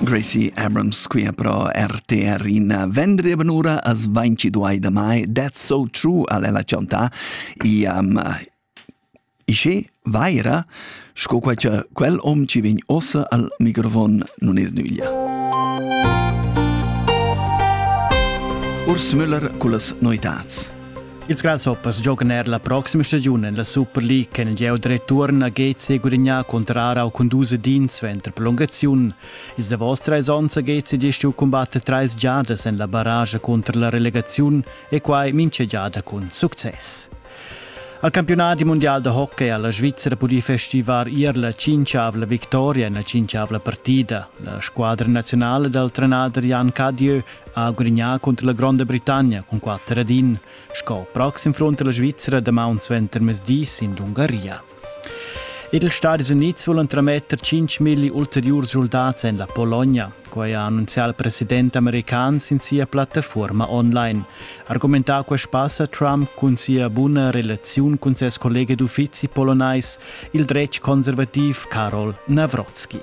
Gracie Abrams qui pro RTR in vendri benura as 22 de mai That's so true al ella chanta iam ischi vaira sco qua cha quel om ci vegn ossa al microfon non es nüglia. Urs Müller cullas noitats. Ils Grasshoppers giocan er la proxima stagiun en la Super League che il gieu return a Gezi gudagnà contro Arau cun dus edins suenter prolungaziun. Ils davos trais onns ha Gezi gest giu cumbatta trais giadas en la barrage contro la relegaziun e quai mincha giada cun success. Al campionat mundial da hockey ha la Svizzera pudì festivar ier la cinquavla victoria en la cinquavla partida. La squadra nazionale dal trenader Jan Cadieu ha gudignà cunter la Gronda Britannia cun quatter ad in, sco proxim front la Svizzera damaun suenter mezdis in l'Ungaria. Ed ils Stadis Unids vulan trametter 5.000 ulteriur soldats en la Pologna. Quai ha annunzià il president american sin sia plattafuorma online. Argumentà quest pass a Trump cun sia buna relaziun cun ses collega d'uffizi polonais, il dretg conservativ Karol Navrotsky.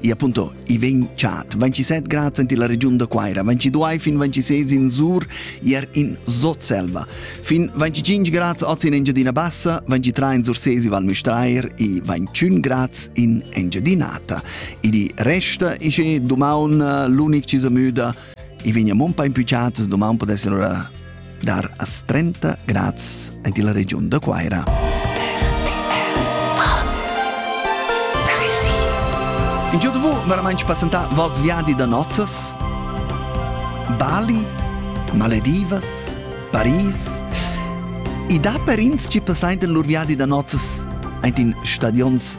e appunto i vegn chat 27 grad in la regiun da Quaira 22 fin 26 in Sur ier in Sotselva fin 25 grad oz in Engiadina Bassa 23 in Sursesi Val Müstair e 21 grad in Engiadinata e di resta isce domani l'unic ci sa müda I vegna mon pa impücciatas doman podessan ora dar as 30 grads ant illa regiun da Cuaira. In giò da vu veramente passentà vals viadi da nozzas? Bali, Maledivas, Paris. I dà per ins chi passaintan lur viadi da nozzas ant in stadions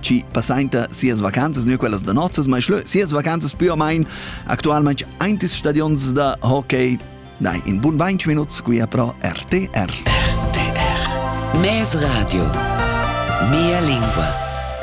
chi passainta sias vacanzas, nu quellas da nozzas, ma schlö sias vacanzas pü o main actualmaing aint ils stadions da hockey. Dai, in bun 20 minuts qui a pro RTR. RTR. Mes radio. Mia lingua.